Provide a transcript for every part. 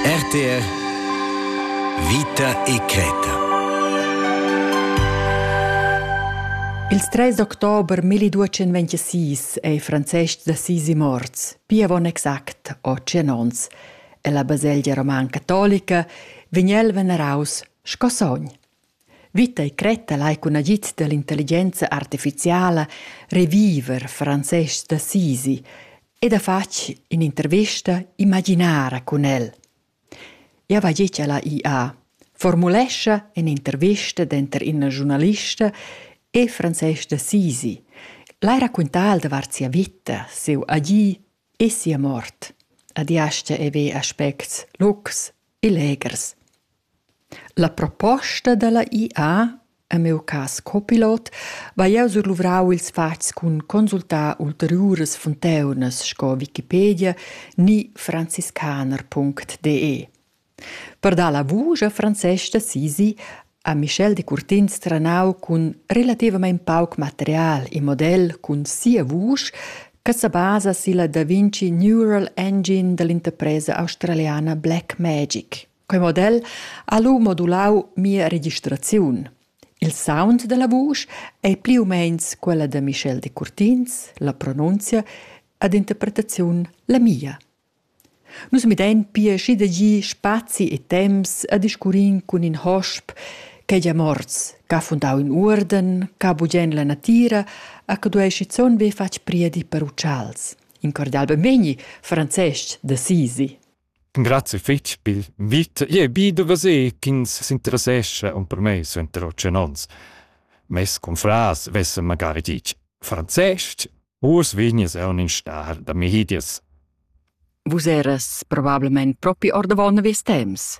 RTR Vita e creta Ils 3 october 1226 è Francesc d'Assisi morts, pia avon exact 8 onns. E la baselgia roman catolica vegn el veneraus sco sogn. Vita e cretta lai cun agid dall'intelligenza artificiala reviver Francesc d'Assisi ed ha fatg in'intervista imaginara cun el. Eu va dir cha la IA formulescha in'intervista denter ina giurnalista e Francesc d'Assisi, lai raccontar davart sia vita, siu agir e sia mort. Adiascha e ve aspects locs e legers. La proposta dalla IA, en miu cass copilot, vai jeu surluvrau ils fatgs cun consultar ulteriuras funteunas sco Wikipedia ni franziskaner.de. Per dar la vusch a Francesca sisi ha Michel Decurtins trenau cun relativamein pauc material in model cun sia vusch che sebasa silla Da Vinci Neural Engine dall'interpresa australiana Blackmagic. Quei model ha lu modulau mia registraziun. Il sound dalla vusch ei pli u meins quella da Michel Decurtins, la pronunzia ad interpretaziun la mia. Nus midein pia schi da gi spazi e temps a discurrin cun in hosp ch'ei gia morts, ch'ha fundau in uorden, ch'ha bugen la natira, a che duei schizun be fatg priedi per utschals. In cordial benvegni, Francesc d'Assisi. Grazie fitg pil vit. Jeu bi da veser ch'ins s'interessescha per mei suenter tschient onns. Mes confrars vessen magari ditg franzestg, uss vegnis eu in star da Mihidius. Vus eras probablemente propi ordavon ves temps.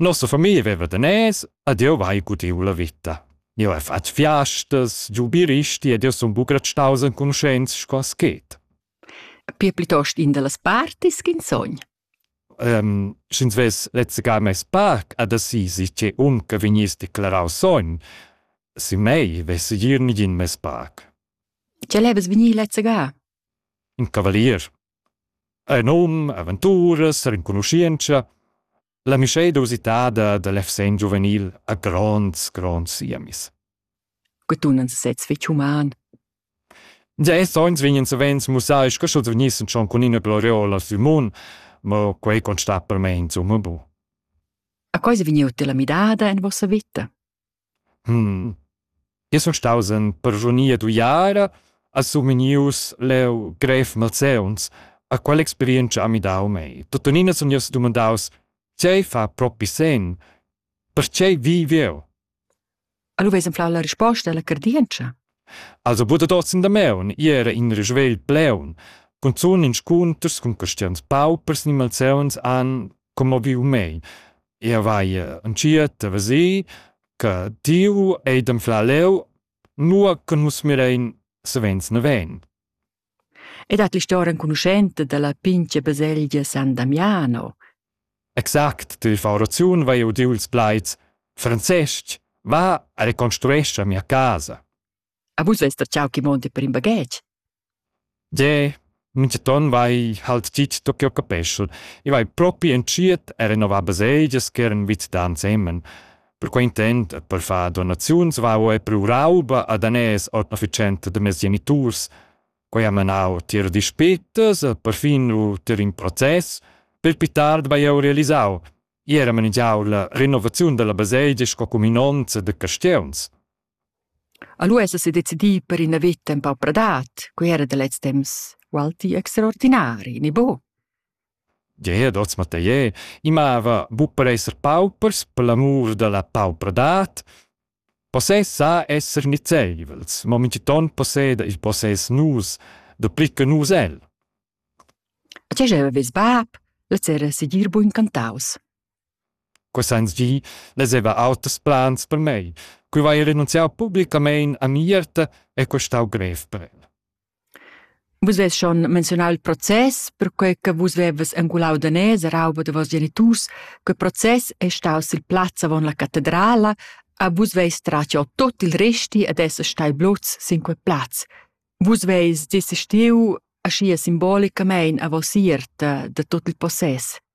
Nossa famiglia veva daners ed jeu vai gudiu la vita. Jeu hai fatg fiastas, giu biristi ed jeu sun buca staus enconuschents sco schet. Pia plitost in dallas partis ch'in sogn. Um, Sch'ins vess lezzegar mes parc ad Assisi, che unca vegniss declarau sogn, sin mei vess gir nigin mes parc. Tg'el havess vegnì lezzegar? In cavalier. Ei num, aventuras, renconuschientscha. La mischeda usitada da l'FSN giuvenil ha gronds, gronds siemis. Che tunan sesez fetg human. Gia è sogns vegnan savens mussai sco sch'els vegnissen schon cun ina gloriola Simon, ma quei constat per me insomma bu. A cosa vegniu te la midada en vossa vita? Jeu sun staus en persunia d'uiara, ha sumignius leu grev malseuns. A quell'experientscha ha midau mei. Tuttenina sun jeu sedumandaus: Tgei fa propi senn? Pertgei viv jeu? A lu veis enflau la risposta alla cardientscha. Also buca dad oz in damaun, ì era in risvegl pleun. Cunzun inscunters cun caschians paupers ni malseuns han commoviu mei. Ia vai entschiet a veser che tiu ei d'anflar leu, nua che nus mirein savens naven. E dat l'historia enconuschenta dalla pintga baselgia San Damiano. Exact, ti fa oraziun vai udiu ils plaids Francesc, va a reconstruescha mia casa. A vus vest der chau chi monte per in baghetg? Jeh, minchaton vai halt dit da ch'eu capeschel. I vai propi entschiet a renovar basegias ch'eran vit da ensemen. Per quai intent e per far donaziuns vau eir prü rauba a daners ord efficienza da meis geniturs. Quai ha manau tier dispetas e perfin ò tier ün process. Pel pü tard vai eu realisau. I era manigiau la renovaziun da la basegia sco cuminonza da caschiuns. A lu esa sedecidi per ina veta empau pradat, quei era da lez temps ualti extraordinari, ni buc? Gie, dots Mathier, i mava buc per esser paupers per l'amur dalla paupradad. Possess sa esser nizeivels, mo mintgiton posseda il possess nus, dapli che nus el. A tgei aveves bab? Lez era segir buc incantaus. Cussagls gi vezeva auters plans per mei. Quei vai renunziau publicamein a Mierta e quei stau grev per el. Vus vus schon menzionau il process, perquei che vus vevas engulau da nez a rauba da vos geniturs, quei process è staus il plaz avon la catedrala, a vus veis tratio tot il resti ad esser stai blots sin quei plaz. Vus veis desistiu ascia simbolicamein a vos ierta da tot il possess.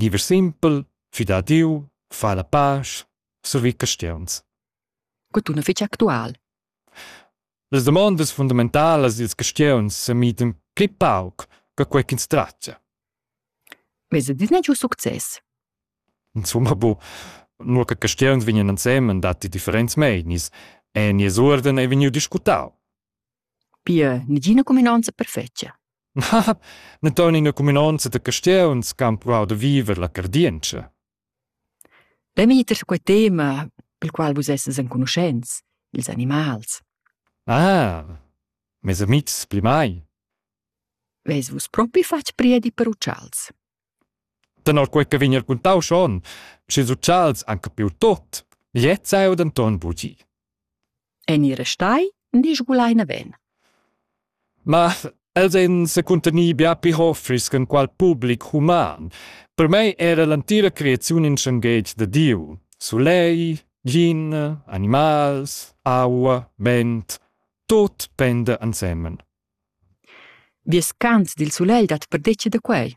Diever simpel, füdà Dieu, fa la pasch, survi caschiuns. Cotun fich actual. Las damondas fundamentalas dils caschiuns s'emitan pli pauc che quei ch'ins tratga. Vesa disney giu success? Insomma, bu, nur che caschiuns vegnan ensemen datti differents meinis e nies uorden ei vegniu discutau. Pia negina cuminonza perfetga. Na ton ina cuminonza da castiuns che han pruau da viver la cardientscha. Demiter quei tema, pel qual vus esses enconuschents, ils animals. Ah, mes amitgs pli mai. Ves vus propi fatg priedi per uccials? Tenor quei che vegn raquintau schon, sch'ils utschals han capiu tot, gliez ei denton bugi. En ir restai ni sgulai naven. Ma els ein secuntenir bia pli hoffris che qual public human. Per mei era l'entira creaziun in schenghetg de Diu. Sulei, gin, animals, aua, vent, tot pende ensemen. Vies cant dil sulegl dat perdetga da quei?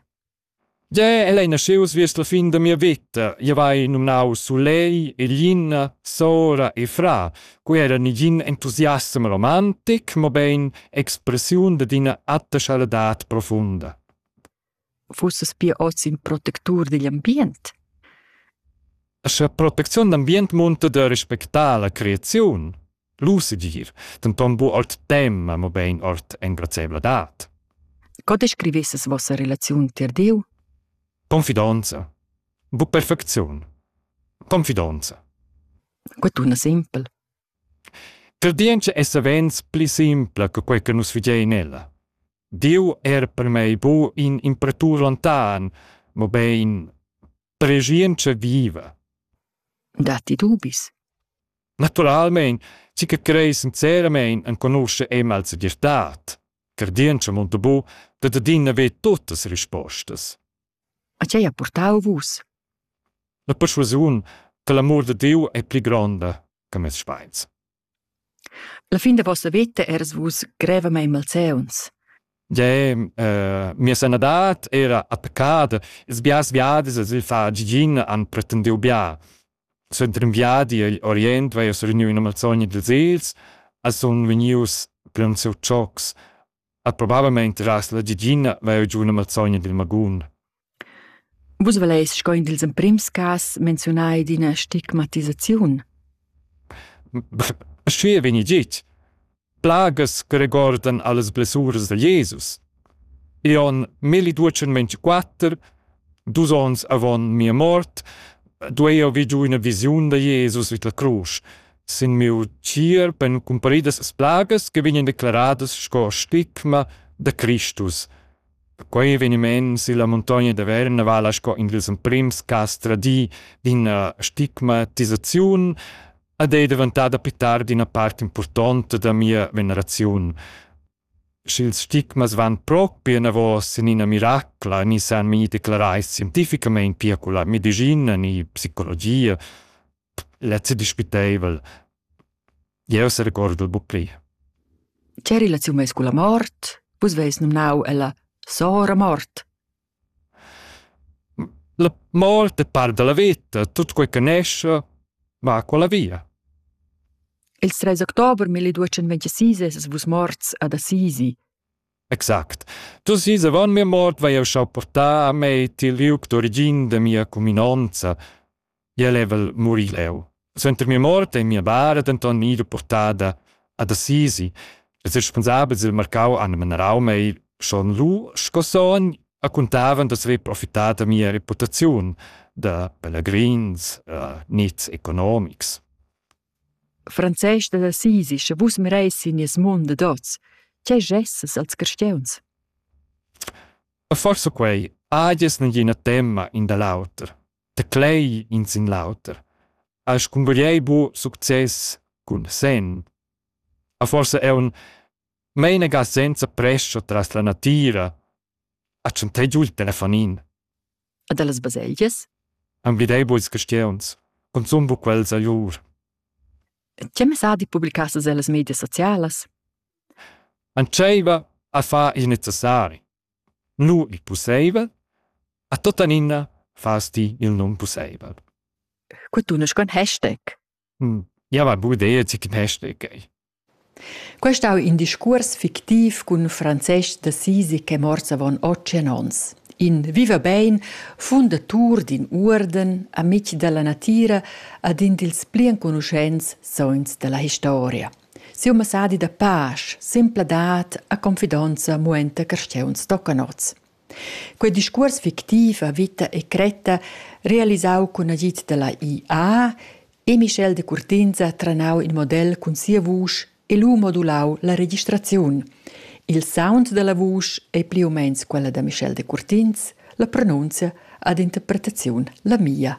Jeu el ei naschius viers la fin da mia veta. Jeu hai numnau Sulei, Elina, Sora e Fra. Quei era negin entusiasm romantic, mobein expressiun dad ina atta schaladat profunda. fussas pia oz in protectur digl ambient? Scha protecziun d'ambient munta da respectar la creaziun, lu segir, denton bu ord tema, mobein ord engrazieivladad. Co descrivesses vossa relaziun tier Diu? Confidonza. Bu perfecziun. Confidonza. Que tuna simpel. Credientscha es savens pli simpla che quai che nus vegiain ella. Dieu è er per mei bu in impratur lontan, mobein pregientscha viva. Datti dubis? Naturalmein, ci che crei sinceramein enconusce Emma al segirtad. Credientscha munta bu, dat adina ve tuttas rispostas. A tgei ha purtau vus? La perschuasiun che l'amur da Diu ei pli gronda che mes speins. La fin da vossa veta eras vus grevamein malseuns. Jeu, eh, mia sanadad era attaccada, ils biars viadis sil far gigin han pretendiu bia. Suenter in viadi agl Orient vai jeu sereniu ina malsogna dils egls, e sun vegnius plaunsiu tschocs, At probabelmaing trast la Gigina vair giù üna mazzogna dil magun. Vus voleis sco in dils emprims cas menziunar ed ina stigmatisaziun. Sch'ei vegni git, plagas che regordan allas blessuras da Jesus. I on 1224, dus ons avon mia mort, duei eu vi giu üna visiun da Jesus vid la crusch, Sin miu tier pon cumparidas plagas che vegnan declaradas sco stigma da Cristus. Quei eveniment silla muntogna da Verna vala sco in dils emprims cass tradii d'ina stigmatisaziun ed ei daventada più tard ina part impurtonta da mia veneraziun. Sch'ils stigmas van propi anavos in ina miracla, ni san mi declarai scientificamein pia con la medicina ni psicologia, lezzi dispiteivel. Jeu serecordo buc pli. Che relaziun meis culla mort? Vus veis nomnau ella Sora mort. La mort è par della vita, tutto quel che nesce va con la via. Il 3 october 1226 es vus morts ad Assisi. Exact. Tu si sevan mia mort vai eu schau portar a mei til liuc d'origin de mia cuminanza. jeu level murir leu. Suenter mia mort ei mia bara denton ira portada ad Assisi. Els responsabels del marcau han menerau mei schon lu sco son a contavan d'esser profitada mia reputaziun da pelegrins uh, nits economics. Frances da Assisi, sche vus mereis in nies mund de dots, che gesses als cristiuns? Forse quei, agies nagina temma in da l'auter. Teclei in sin l'auter, has cungugliei buc success cun senn. A forsa aunc meinaga senza prescha tras la natira, a tschantei giu il telefonin. E dallas baselgias? Emblidei buc ils castieuns, consum buc quels a lur. Tgei messadi publicassas ellas medias socialas? Entscheiva a far il necessari. nu il pusseivel, a tuttenina fas ti il non pusseivel. Cu tunesch con hashtag? Hm, ja va bu idea chi cun hashtag ei. Quest ha in discuors fictiv cun Francesc d'Assisi che morts avon otg ons. In viva bein, fundatur d'in uorden, amic dalla natira, ad in dils pli enconuschents sogns dalla historia. Siu messadi da pasch, sempladad e confidonza muenta carstgeuns toccanots. Quei discuors fictiv a vita e cretta, realisau cun agid dalla IA, e Michel de Curtinza tranau in model cun sia vusch e lu modulau la registraziun. Il sound dalla vusch ei pli u meins quella da Michel de Curtins, la pronunzia ad interpretaziun la mia.